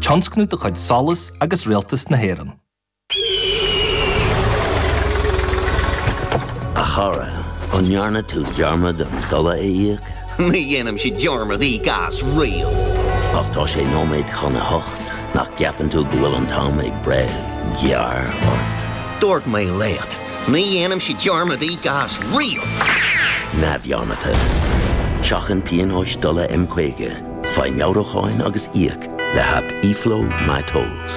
tionscnamh de chuid Solas agus Rialtas na hÉireann. A chara, an ndearna tú dearmad ar an dtola a íoc? Ní dhéanaimse dearmad íoc as riamh. Ach tá sé nóiméad chun a hocht, nach gceapann tú go bhfuil an t-am ag breith gearr ort? Dúirt mé leat, ní dhéanaimse dearmad íoc as riamh! Neamhbheannaithe. Seachain pionóis dtola M50 Faigh meabhrúcháin agus íoc le haip eFlow MyTolls.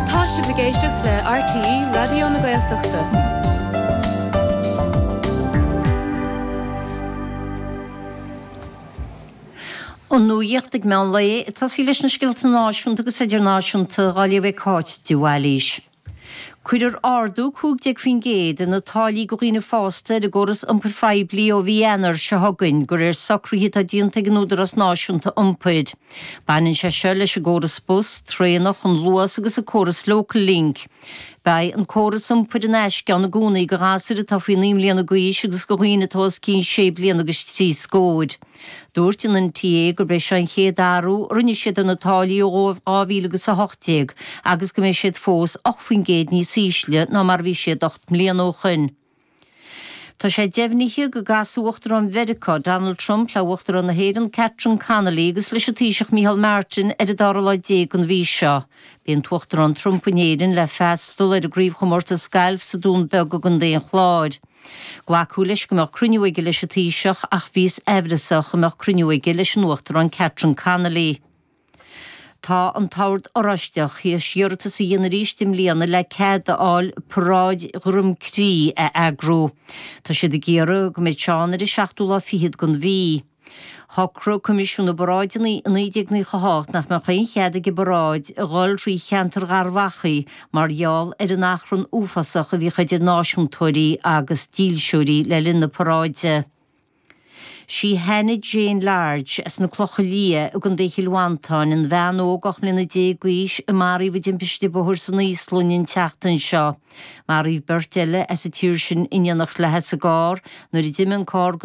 Tá sibh ag éisteacht le RTÉ Raidió na Gaeltachta. An nuaíocht ag meán lae ag tosú leis na scéalta náisiúnta agus idirnáisiúnta, dhá léamh ag Cáit de Bhailís. Cuirfear ardú 15% ar na táillí go dhaoine fásta ar an gcóras iompair phoiblí ó mhí Eanáir seo chugainn de réir socruithe atá déanta ag an Údarás Náisiúnta Iompair. Baineann sé seo leis an gcóras bus, traenach, an Luas agus an córas Locallink. Beidh an córas iompair in aisce ann i gcónaí do ghasúir atá faoi naoi mbliana d'aois agus do dhaoine atá os cionn sé bliana agus trí scór. Dúirt an NTA gurb é seo an chéad athrú a rinne siad ar na táillí ó 2018 agus go mbeidh siad fós 8 faoin gcéad níos ísle ná mar a bhí siad ocht mbliana ó shin. Tá sé deimhnithe go gcasfaidh Uachtarán Mheiriceá, Donald Trump le hUachtarán na hÉireann, Catherine Connolly agus leis an Taoiseach Micheál Martin ar an dara lá déag den mhí seo. Beidh an tUachtarán Trump in Éirinn le freastal ar an gcraobhchomórtas gailf sa Dún Beag i gContae an Chláir. Glacadh leis go mbeadh cruinniú aige leis an taoiseach ach bhíothas amhrasach go mbeadh cruinniú aige leis an Uachtarán Catherine Connolly. Tá an t-ord oráisteach th'éis iarratas a dhéanamh arís i mbliana le cead a fháil paráid Dhroim Crí a eagrú. Tá siad ag iarraidh go mbeidh sé ann ar an seachtú lá fichead den mhí. Shocraigh Coimisiún na bParáideanna i 1998 nach mbeadh aon chead ag an bparáid a dhul thrí cheantar Gharbh Achaidh mar gheall ar an achrann uafásach a bhíodh idir náisiúntóirí agus dílseoirí le linn na paráide. Sí Hannah Jane Large as na Clocha Liath i gContae Chill Mhantáin, an bhean óg 18 mbliana d'aois a maraíodh i dtimpiste bhóthair san Íoslainn an tseachtain seo. Maraíodh beirt eile as an tír sin in éineacht léi sa gcarr nuair a d'imigh an carr go